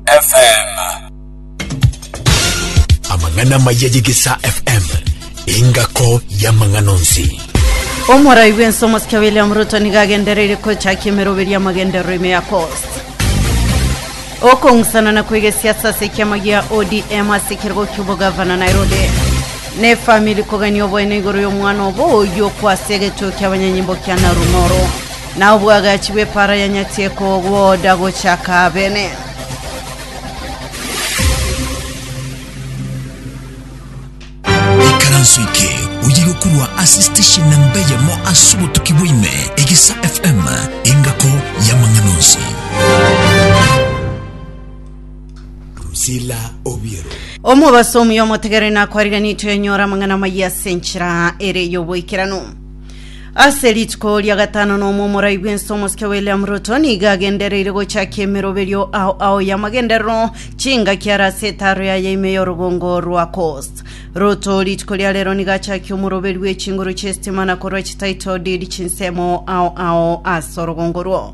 FM. Amang'ana amaya y'Egesaa FM, engako y'amang'ana onsi. Omorai bw'ense omosike William Ruto nigo agendereire gochakia emeroberio y'amagenderero ime ya Coast. Okong'usana na koiga esiasa ase ekiama gia ODM ase ekerogo ki'obogavana Nairobi. Ne famili kogania oboene igoro y'omwana obo oyio kwase egechuo ki'abanyanyimbo kia Narumoro. Na obwagachi bw'epaara ya Nyasae kogoda gochia kabene. Ikaranso eke oye gokorwa ase station namba eyemo ase obotuki bwa ime, Egesa FM, engako y'amang'ana onsi. Rusila Obiero. Omobaso omuya omotegere nakwarire nitwenyora amang'ana amayia ase enchera ere y'oboikeranu. Ase rituko ria gatano na omomorai bw'ense omosike William Ruto nigo agendereire gochakia emeroberio ao ao y'amagenderero chingaki are ase etaro yaye ime y'orogongo rwa Coast. Ruto rituko ria rero nigo achakia omoroberi bw'echinguru chi'esitima na korwa chititle deed chinsemo ao ao ase orogongo rwo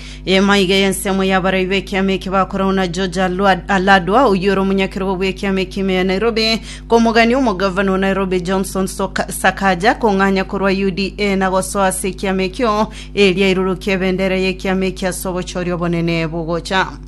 Eema iga y'ensemo y'abarai b'ekiama eke bakoragwo na George Alwa- Aladwa, oyio ore omonyakerogo bw'ekiama ekime ya Nairobi, komogania omogavana o Nairobi Johnson Soka- Sakaja kong'anya korwa UDA na gosoa ase ekiama ekio, eria airorokie ebendera y'ekiama eki ase obochori obonene bogocha.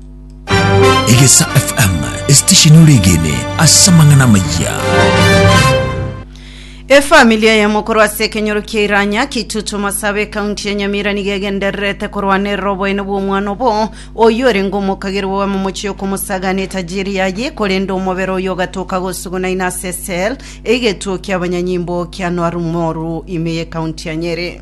Egesa FM, esitesheni oregene ase amang'ana amayia. efamilia yamo korwa ase ekenyoro kia iranya kitutu masabe ekaunti ya nyamira nigo egendererete korwanerera oboene bw'omwana obo oyo orenge omokagerwa owe momochie okomosagana etajiri yaye korende omobere oyo ogatoka gosuguna ina ase sel egetuo kia abanyanyimbo kia nwarumoru ime y'ekaunti ya nyeri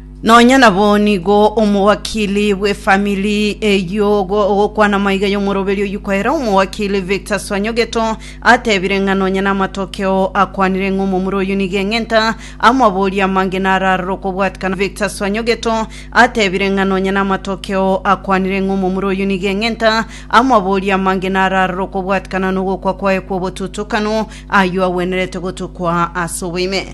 Nonya nabo nigo omowakili bw'efamili eyio ogo ogokwana amaiga y'omoroberi oyio koera omowakili Victor Swanyogeto atebire ng'a nonya namatokeo akwanire ng'a omomura oyio nigo eng'enta amabori amange nararora okobwatikana Victor Swanyogeto atebire ng'a nonya namatokeo akwanire ng'a omomura oyio nigo eng'enta amabori amange nararora okobwatikana nogokwa kwaye kw'obotutokano ayio agwenerete gotukwa ase oboime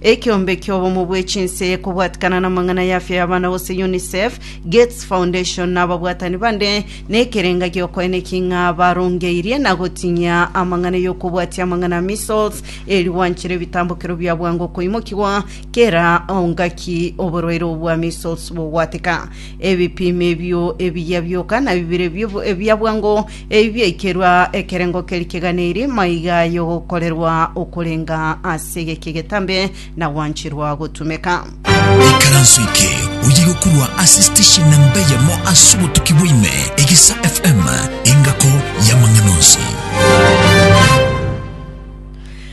Ekeombe ki'obomo bwe chinse, kobwatikana namang'ana y'afya y'abana gose UNICEF, Gates Foundation na ababwatani bande, nekerenga giokoeneki ng'a barongeirie na gotinyia amang'ana y'okobwatia amang'ana a measles, eri gwanchere ebitambokero bia bwango koimokigwa kera ongaki oborwaire obo bwa measles bogwateka. Ebipimo ebio ebiya bioka na bibere bia bwango Ebi biaikerwa ekerengo keria keganeirie maiga y'ogokorerwa okorenga ase geki egetambe na gwancherwa gotumeka. Ikaranso eke oyegokorwa ase station namba eyemo ase obotuki bwaime, Egesa FM, engako y'amang'ana onsi.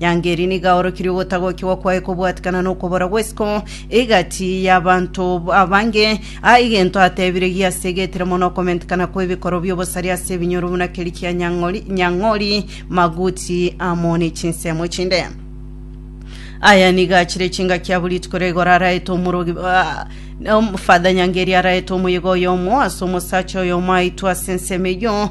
Nyango eria nigo aorokirie ogotagokigwa kwaye kobwatikana nokobora gw'esiko egati y'abanto b- abange, aa egento atebire giasegetire mono okomentekana kw'ebikoro bi'obosari ase ebinyoro buna keria kia Nyang'ori, Nyang'ori, Maguti amo ne chinsemo chinde. Aya nigo achire chingaki abwo rituko ria igoro araete omorogi ah, na om- Father Nyangeri araete omoyega oyomo ase omosacha oyomo aitwe ase ensemo eyio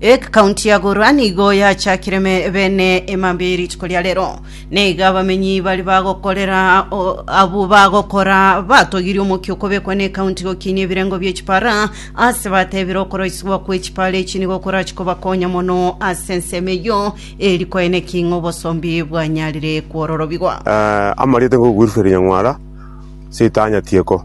Ekaunti ya Gorwa nigo yachakire me- bene emambia ye rituko ria rero. Naiga abamenyi baria bagokorera o- abwo bagokora batogirie omokia okobekwa n'ekaunti gokinia ebirengo bie chipara ase batebire okoroisigwa kwe chipara echi nigo korache kobakonya mono ase ensemo eyio eri kwaye naki ng'a obosombi bwanyarire kwororobigwa. Eh, amarieta ngogueruseria nyang'wara, sitanya tieko.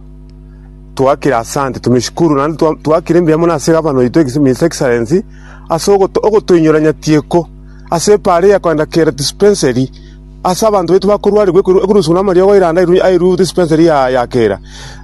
Twakire asante, tumeshukuru, naende twa- twakire mbuya mono ase Gavana oito, His His Excellency, ase ogoto- ogotoinyora nyatieko ase epaara eye ya kogenda kera dispensary ase abanto baito bakorwarigwa ekorwa- ekoruswa namariogo airanda airwe- airwe dispensary ya ya kera.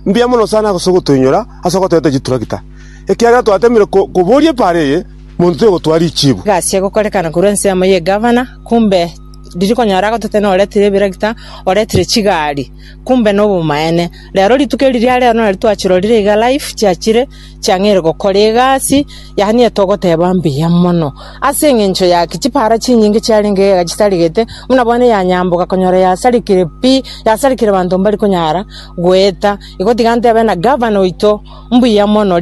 Mbuya mono sana ase ogotoinyora, ase ogotoeta chiturakita, ekiagera twatemire ko- koboria epaara eye monto toigotwara richibu. Egasi egokorekana korwa ensemo ye Gavana, kumbe riri konyora agototena oretire ebirakita, oretire chigari. Kumbe nobomaene. Rero rituko eri ria rero nario twachirorire iga live, chiachire chiang'eire gokora egasi, yaani eye togoteba mbuya mono. Ase engencho yaki, chipara chinyinge chiarenge iga iga chitarigete, buna bono eyanyamboka konyora yasarikire pi, yasarikire banto mbari konyara goeta. Igo tiga ntebe na gavana oito, mbuya mono.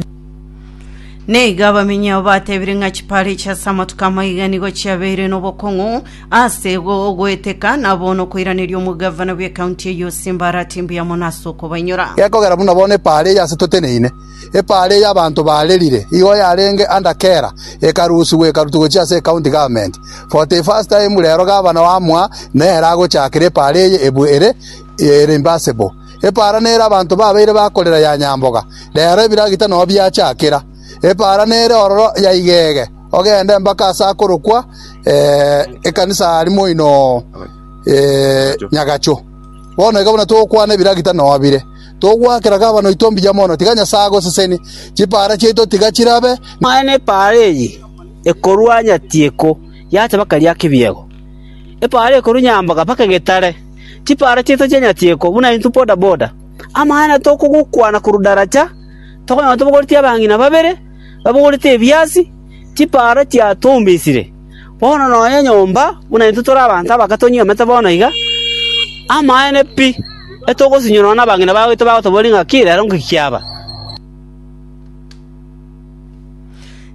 Na iga abamenyi abo batebire ng'a chipara echi ase amatuko amaiga nigo chiabeire nobokong'u, Ase goeteka na bono koiraneria omogavana bw'ecounty eyio Simbarati mbuya mono ase okobainyora. Gekogera buna bono epaara eye ase toteneine, epaara eye abanto barerire, igo yarenge under kera, ekarusigwa ekarutwa gochia ase ecounty government. For the first time rero gavana oamwa nere agochakera epaara eye ebu ere reimbursable. Epaara nere abanto babeire bakorera ya nyamboga, rero ebiragita nao biachakera. Epaara nere ororo ya igege, ogende mpaka ase akorokwa ekanisa aria moino Nyagacho. Bono iga buna togokwana ebiragita nobire, togoakera gavana oito mbuya mono, tiga Nyasae agosesenie. Chipaara chiaito tiga chirabe Aye nepaara eye ekorua nyatieko yacha mpaka eria kibiego, epaara ekorua nyamboga mpaka egetare. Chipaara chiaito chia nyatieko buna intwe bodaboda, amaene tokogokwana korwa daracha. Tokonyora tobogoretie abang'ina babere babogorete ebiasi, chipaara chiatombesire. Bono nonya nyomba buna intwe tore abanto abake tonyuomete bono iga. Amaene pi, etogosinywa nonya nabang'ina baito bagotoboria ng'a ki rero inki kiaba.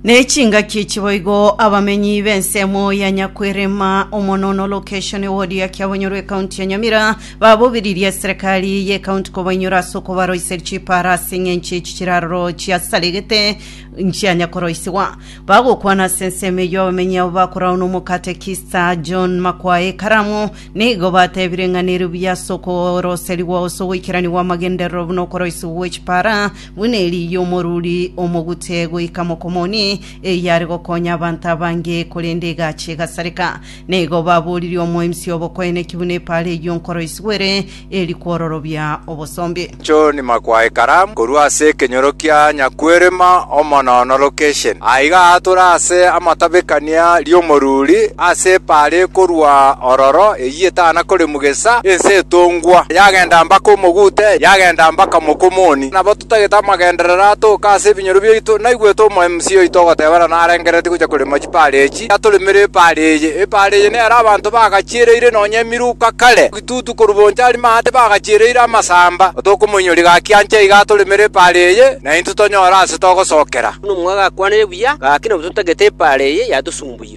Nechingaki echi boigo abamenyi b'ensemo ya Nyakwerema omonono location ward ya Kiabonyoro ekaunti ya Nyamira babobiririe eserekari y'ekaunti kobainyora ase okobaroisia chipara ase eng'encho echi chiraroro chiasaregete nchianya koroisigwa bagokwana ase ensemo eyio abamenyi abo bakorao n'omokate Kista John Makwae Karamu nigo batebire ng'a nerubuya ase okoroserigwa ase ogoikeranigwa amagenderero buna okoroisigwa gw'echipara Buna eri y'omoruri omogute goika mokomoni, eyio are gokonya abanto abange, korende egacha egasareka. Na igo baboririe omoimsi obokoene ki buna epaara eyio nkoro isugwere, eri kwororobia obosombe. John Makwayi Karam korwa ase ekenyoro kia Nyakwerema Omonono Location aiga aatore ase amatabekania ri'omoruri ase epaara ekorwa ororo eyio. Yetana koremwa gesa, ense etongwa, yagenda mpaka omogute, yagenda mpaka mokomoni. Nabo totagete amagenderero atoke ase ebinyoro biaito. Naigwete omoMCA oito ogotebana narengereretie gocha korema chipaara echi, yatoremera epaara eye. Epaara eye nero abanto bagachiereire nonya emiruka kare, egitutu korwa bonchari maate bagachiereire amasamba. Tokomoinyoria gaki ancha iga atoremere epaara eye, naintwe tonyore ase togosokera. Buna omwabo agakwanirie buya, gaki nabo totagete epaara eye yatosumbuire.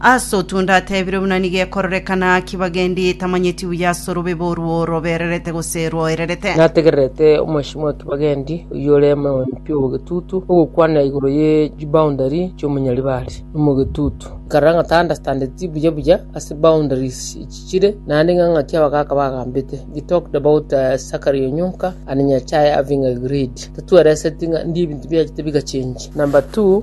Ase otwo ndatebire buna nigo ekororekana ki bagendi tamanyeti buya ase orobebe orwo robererete gose rwoererete. Nategererete omweshimiwa o kibagendi, oyio ore omoempi obogetutu, ogokwana igoro ye chiboundary chi'omonyaribare nomogetutu. Nkarora ng'a tandastandeti buya buya ase boundaries echi chire, naende ng'a ng'aki abagaka bagambete. They talked about uh, Zachary Onyonka and Nyachae having agreed. Tatwereseti ng'a ndie ebinto biachete bigachengi. Number two,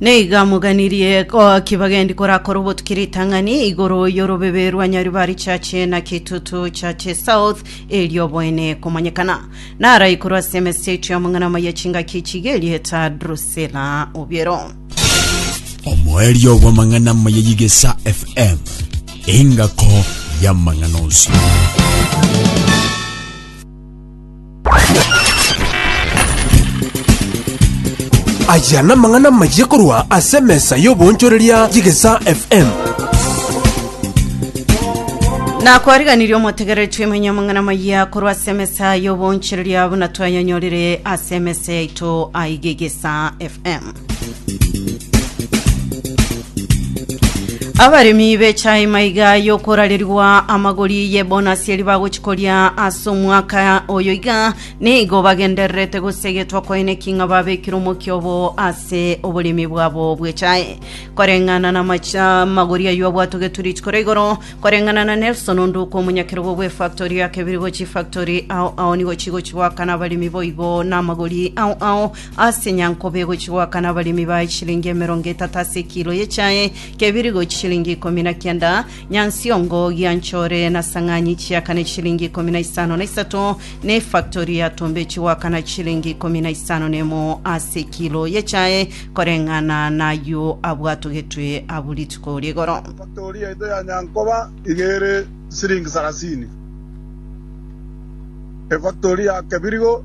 Naiga moganirie ki bagendi korakora obotuki ritang'ani igoro y'orobebe rwa Nyaribari Church na Kitutu Church South erioboene komanyekana naraikorwa ase emesechio y'amang'ana amaya chingaki chiga erieta Drusilla Obiero. Omoerio bw'amang'ana amaya y'Igesa FM, engako y'amang'ana onsi. Aya namang'ana amayia korwa ase emesa y'oboonchoreria y'Egesaa FM. nakwariganirie omotegereretie emenye amang'ana maya korwa ase emesa y'oboonchereria buna twayanyorire ase emesa yaito aigegesa fm Abaremi b'echae maiga y'okorarerigwa amagori ye bonasi eri bagochikoria ase omwaka oyo iga nigo bagendererete gosegetwa kwaene king'a babekire omokia obo ase oboremi bwabo bw'echae koreng'ana na macha magori aywo abwatogetwe rituko ria igoro koreng'ana na Nelson Onduku omonyakerogo bw'efactory ya Kebirigo chifactory ao ao nigo chigochigoakana abaremi boigo na amagori ao ao Ase enyankoba egochia goakana abaremi bae chiringi emerongo etato ase ekilo y'echae, kebiri gochia chiringi ikomi na kianda, nyansiongo, gianchore, na sang'anyi chiakane chiringi ikomi na isano na isato, na efaktori y'atombe echie goakana chiringi ikomi na isano na emo ase ekilo y'echae, koreng'ana nayio abwatogetwe abwo rituko ri'igoro. Efaktori yaito ya nyankoba iga ere chisiringi sarasini. Efaktori ya kebirigo.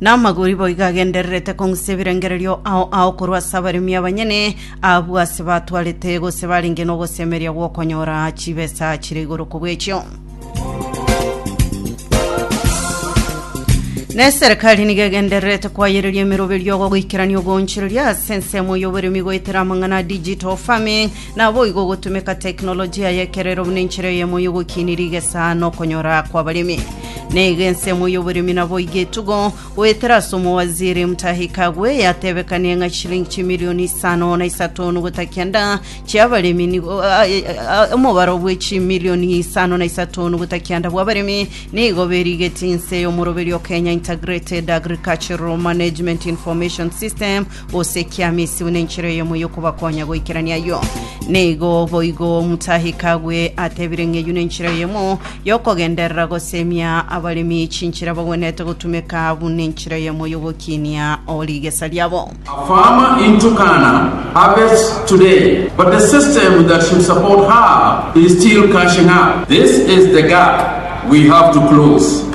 Namagori boigo agendererete kong'usia ebirengererio ao ao korwa ase abaremi abanyene abwo ase batwarete gose barenge nogosemeria gw'okonyora chibesa chire igoro kobw'echio. Ne serikali nigo egendererete kwayereria emeroberio goikerania ogoonchereria ase ensemo y'oboremi goetera amang'ana ya digital farming Naboigo ogotumeka teknolojia y'ekero ero buna enchera eyemo y'ogokiini rigesa na okonyora kw'abaremi. Naiga ensemo y'oboremi naboigo etugo, goetera ase Omowaziri Mutahi Kagwe yatebekanie ng'a chilingi chimilioni isano na isato nugota kenda chi'abaremi nigo a- a- omobaro bwe chimilioni isano na isato nugota kianda bw'abaremi nigo berigetie inse y'omoroberio Kenya Integrated Agricultural Management Information System gose ekiamisi buna enchera eyemo y'okobakonya goikerania ayio. Na igo boigo Omotaahi Kagwe atebire ng'a eyio nenchera eyemo y'okogenderera gosemia abaremi chinchera bagwenerete gotumeka buna enchera eyemo y'ogokinia o rigesa riabo. A farmer in Turkana harvests today, but the system that should support her is still cashing up. This is the gap we have to close.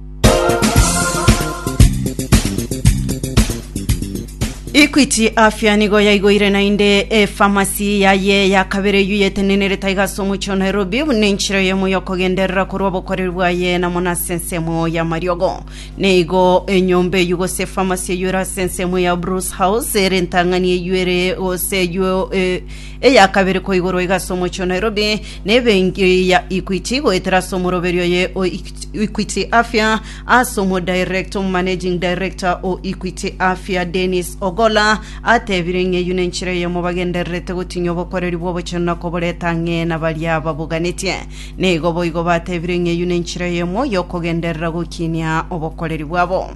Equity Afya nigo yaigoire naende efamasi yaye ya kabere eyio yetenenerete aiga ase omochie wa Nairobi buna enchera eyemo yokogenderera korwa obokoreri bwaye na mono ase ensemo y'amariogo. Neigo enyomba eyio gose efamasi eyio ere ase ensemo ya Bruce House ere entang'ani eyio ere gose eyio eh, eya kabere koigorwa iga ase omochie wa Nairobi na ebenki ya Equity goetera ase omoroberio oye o Equity Afya ase omodirector omomanaging director o Equity Afya Dennis Ogola atebire ng'a eyio nenchera eyemo bagendererete gotinyia obokoreri bw'obochenu na koboreta ang'e na baria baboganetie. Nigo boigo batebire ng'a eyio nenchera eyemo y'okogenderera gokinia obokoreri bwabo.